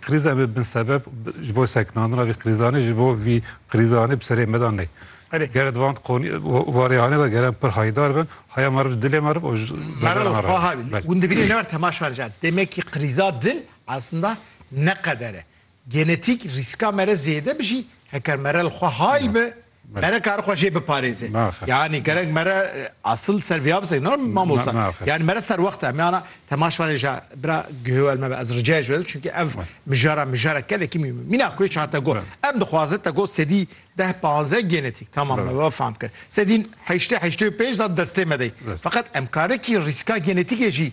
Krîza bi bin sebeb ji bo seknandina vî krîzanê ji bo vî krîzanê bi serê me de nê. Erê. Ger di van qonî warêyanê de geran pir haydar bin, haya meriv dilê meriv û ji Merivê xwe ha hûn dibînin ne ber tema şer jan. Demekî krîza dil eslinda ne qeder e. Genetîk rîska mere zêde bi jî heker merel xwe hay bi. Mere kar xwe jê biparêze. Yani gerek mere asıl ser vîya bisek ne mamosta. Yani mere ser wexta me ana temaş vane ja bira gihewel me ez ricaya ji wed çünkü ev mijara mijara kelekî mî mîna ku hiç hate got. Em dixwaze te got sedî deh panze genetik tamam me ve fam kir. Sedîn heştê heştê û pênc zat destê me dey. Feqet em karekî rîska genetikê jî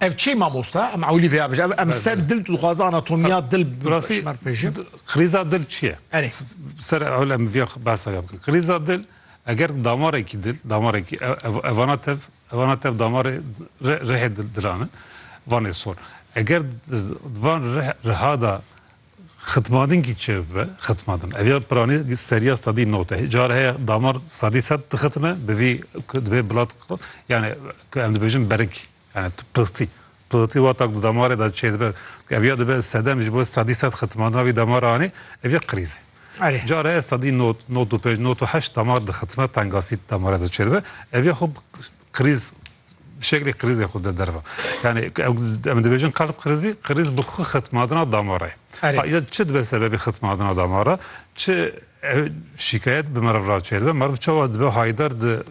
Ev çi mamosta? Em ewlî vê avêje. Ev em ser dil dixwaze anatomiya dil şmer pêjin. Krîza dil çi ye? Erê. Ser ewle em viya behsa ya bikin. Krîza dil eger damarekî dil, damarekî evana tev, evana tev damarê rihê dilan e. Vanê sor. Eger van riha da Xitmadin kî çi be? Xitmadin. Ev ya piranî seriya sadî not e. Car heye damar sadî sed dixitime bi vî ku dibê bilat yani ku em dibêjin berik yani pixtî. Pixtî wata ku damarê de çê dibe ku ev ya dibe sedem ji bo sadî sed xitmadina vî damara anî ev ya krîz e. Erê. Car heye sadî not, not û pênc, not û heşt damar dixitime tengasî damara de çê dibe. Ev ya xwe Kriz bi şeklê krizê xwe de derve. Yani em dibêjin kalb krizî, kriz bi xwe xitmadina damara ye. Ya çi dibe sebebê xitmadina damara, çi şikayet bi meriv re çêdibe, meriv çawa dibe haydar di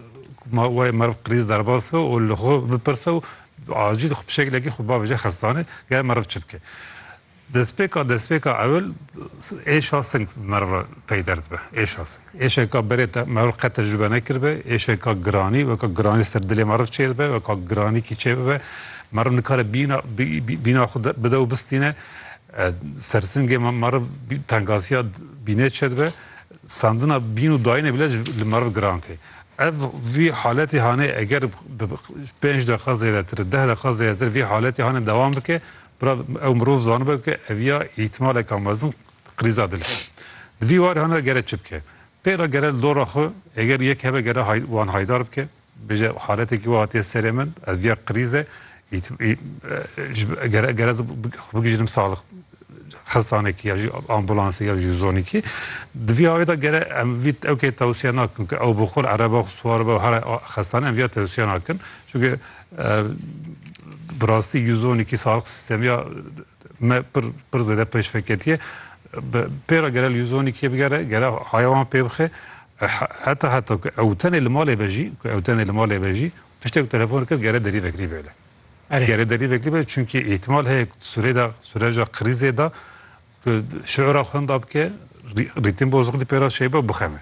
ma wê meriv kriz derbas be û li xwe bipirse û acîl xwe bi şeklekî xwe bavêje xestanê, ger meriv çi bike. Destpêka destpêka ewil êşa sing bi meriv re peyder dibe. Êşa sing. Êşeka berê te meriv qet tecrube nekiribe, êşeka giranî weka giranî li ser dilê meriv çê dibe, weka giranîkî çê bibe. Meriv nikare bîna bîna xwe bide û bistîne. Ser singê meriv tengaziya bînê çê dibe. Sandina bîn û dayînê bile li meriv giran tê. Ev vî haletî hanê eger bi pênc deqiqa zêdetir, deh deqiqa zêdetir vî haletî hanê dewam bike, Bira ew mirov zanibe ku ev ya îhtimaleka mezin krîza dil e. Di vî warhan de gere çi bike? Pêra gere li dora xwe eger yek hebe gere hay wan haydar bike, bêje haletekî wiha hatiye serê min, ev ya krîz e, gere gere ez xwe bigihîjim saxlix xestanekî ya jî ambûlansê ya jî zonîkî. Di vî awê de gere em vî ew kê tewsiye nakin ku ew bi xwe li ereba xwe siwar be û here xestane em vî ya tewsiye nakin. Çunke Bi rastî Guzonîkî sağlıq sîstemî ya me pir pir zêde pêşveketîye. Pêra gere li Guzonîkî bigere, gere haya wan pê bixe. Heta heta ku ew tenê li malê be jî, ku ew tenê li malê be jî tiştê ku telefon dike gere derî vekirî bêle. Gere derî vekirî bêle çunkî îhtîmal heye ku surê de sureca krîzê de ku şiûra xwenda bike, rîtim bozukilî pêra şeybe û bixeme.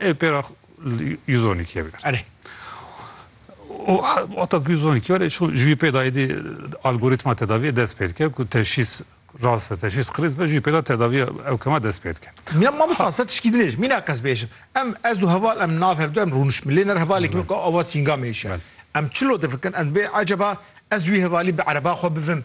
Ê pêra Yuzonikê be. Erê. O ata ku Yuzonikê were şo ji wî pêda êdî algoritma tedaviyê dest pê dike ku teşhîs rast be teşhîs qirîz be ji wî pêda tedaviya ew kema dest pê dike. Mîna mamosta se tişkî dinêj mîna qez bêjim. Em ez û heval em nav hevdu em rûnişmin lê ner hevalê kimin ku ava sîngamê hişe. Em çilo difikirin em dibê eceba ez wî hevalî bi ereba xwe bivim.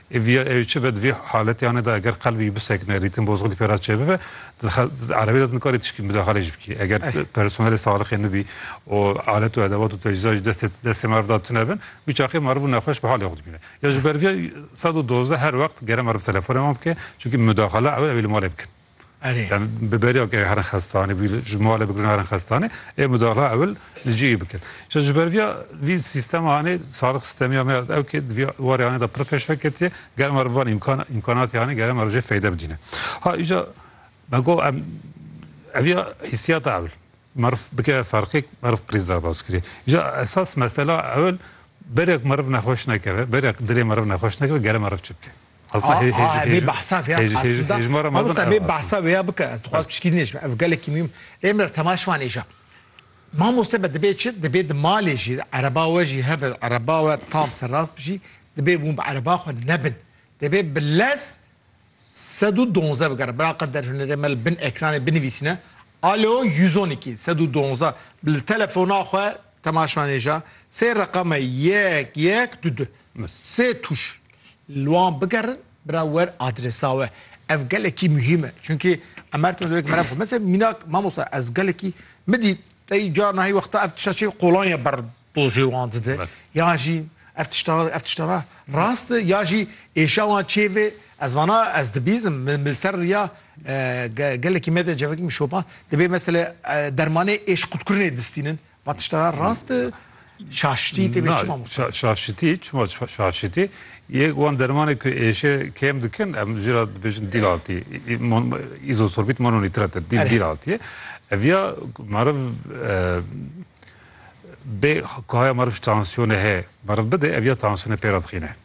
Êviya ew çi be di vê haletiyanê de eger qelbî bisekine, rîtim bozxî di pê re çêbibe, di erebê de tu nikarî tişkî midaxalê jî bikî. Eger personelê salixê nibî û alet û edevat û tecîza jî destê destê meriv de tune bin, wî çaxê meriv û nexweş bi halê xwe dibîne. Ya ji ber vê sed û dozdeh her wext gere meriv telefonê wan bike, çimkî midaxala ew ewê li malê bikin. Bi beriya ku herin xestanê bû ji malê bigirin herin xestanê ê mudahla ewil li cihê bikin. Ji ji ber viya vî sîstema anê salix sîstemiya me ew ki viya warê anê da pir pêş veketiye gerem ar van îmkan îmkanatê anê gerem ar jê feyde bidîne. Ha îja me go em eviya hîsiyata ewil merif bike ferqek merif qirîz derbas kirê. Îja esas mesela ewil berek merif nexweş nekeve berek dilê merif nexweş nekeve gerem merif çi bike. Esla hê- hêj- Aa, vê hêj- behsa vê hêj- hêj- aslında. hêjmara mezin Hamısa vê ev behsa aslında. vê bike. Ez dixwaz pişkî nêjim. Ev gelekî mühim. Êm re tema şivan êja. Mamoste be dibê çi? Dibê di malê jî ereba we jî hebe. Ereba we tam serrast bijî. Dibê hûn bi ereba xwe nebin. Dibê bi lez sed û donze bigere. Bira qe der hunerê me li bin ekranê binivîsîne. Alo 112 sed û donze. Bi li telefona xwe Temaşvanêja sê reqame yek yek du du me sê tûş li wan bigerin bira wer adresa we. Ev gelekî muhîm e. Çunkî em her tim dibek merem xwe. Mesela mînak mamosta ez gelekî min dî tey carna hî wexta ev tişta çê qolanya ber dozê wan dide. Ya jî ev tişta ev tişta ra rast ya jî êşa wan çê vê ez vana ez dibîzim min li ser riya Gelekî me de cevekî min şopa, dibê meselê dermanê êşqutkirinê distînin. Va tişta ra rast e? Şaşitî tê bê çi mamoste? Şaşitî, çima şaşitî? Yê wan dermanê ku êşê kêm dikin, em jî ra dibêjin dîlatî. Îzosorbît mononîtrat e, dîlatî ye. Ev ya meriv bê ku haya meriv ji tansiyonê heye, meriv bide, ev ya tansiyonê pê re dixîne.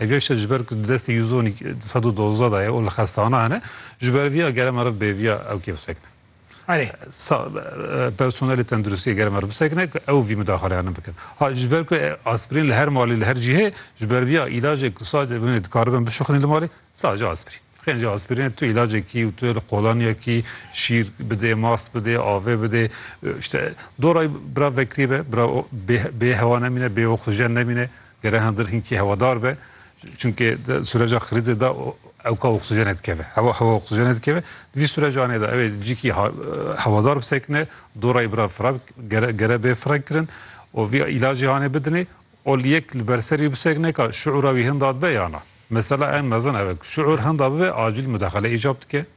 Ev yek şer ji ber ku di destê Yuzonî di sed û dozdeh de ye û li xestehana hene, ji ber vî ya gere meriv bê vî ya ew kêf sekine. Erê. Sa personelê tenduristiyê gere meriv bisekine ku ew vî mudaxaleyanan bikin. Ha ji ber ku aspirîn li her malê li her cihê ji ber vî ya îlacê ku sadece binê dikaribin bişuxinîn li malê sadece aspirîn. Xênce aspirînê tu îlacekî û tu li qolaniyekî şîr bidê, mast bidê, avê bidê. İşte dorayî bira vekirî be, bira bê hewa nemîne, bê oksijen nemîne. Gere hindir hinkî hewadar be çunke sureca xirîzê da ewka oksijenê dikeve hewa hewa oksijenê dikeve vî surecanê da evê cîkî hewadar bisekine dorayê bira fira gere gere bê fira kirin û vî îlacê hanê bidinê ol yek li ber serî bisekine ka şiûra wî hinda dibe yana mesela en mezin ev şiûr hinda bibe acîl mudaxele îcab dike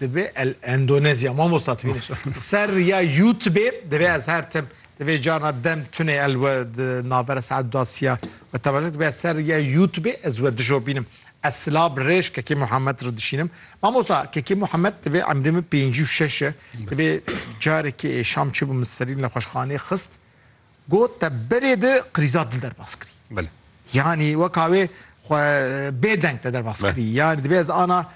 Divê el Endonezya mamosta tu bîne ser riya youtubê divê ez her tim divê carna dem tunê el we navbera saet dasiya we temaşe divê ser riya youtubê ez we dijo bînim ez sila bi rêj kekê Muhammed re dişînim mamosta kekê Muhammed divê emrê min pêncî û şeş e divê carekê êşam çêbû min serî li nexweşxanê xist Got te berê di qrîza dil derbas kirî. Belê. Yanî weka wê xwe bêdeng te derbas kirî. Yanî dibe ez ana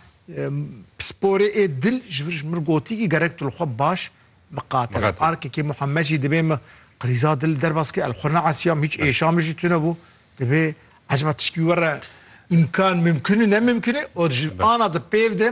pisporê ê dil ji vir ji min gotî kî gerek tu li xwe baş miqate be. Arkekê Muhammed jî dibê min qrîza dil derbas kirî. El xwe neesiyam hîç êşa min jî tune bû. Dibê ecba tişkî were îmkan mimkun û nemimkun e û ji ana di pêv de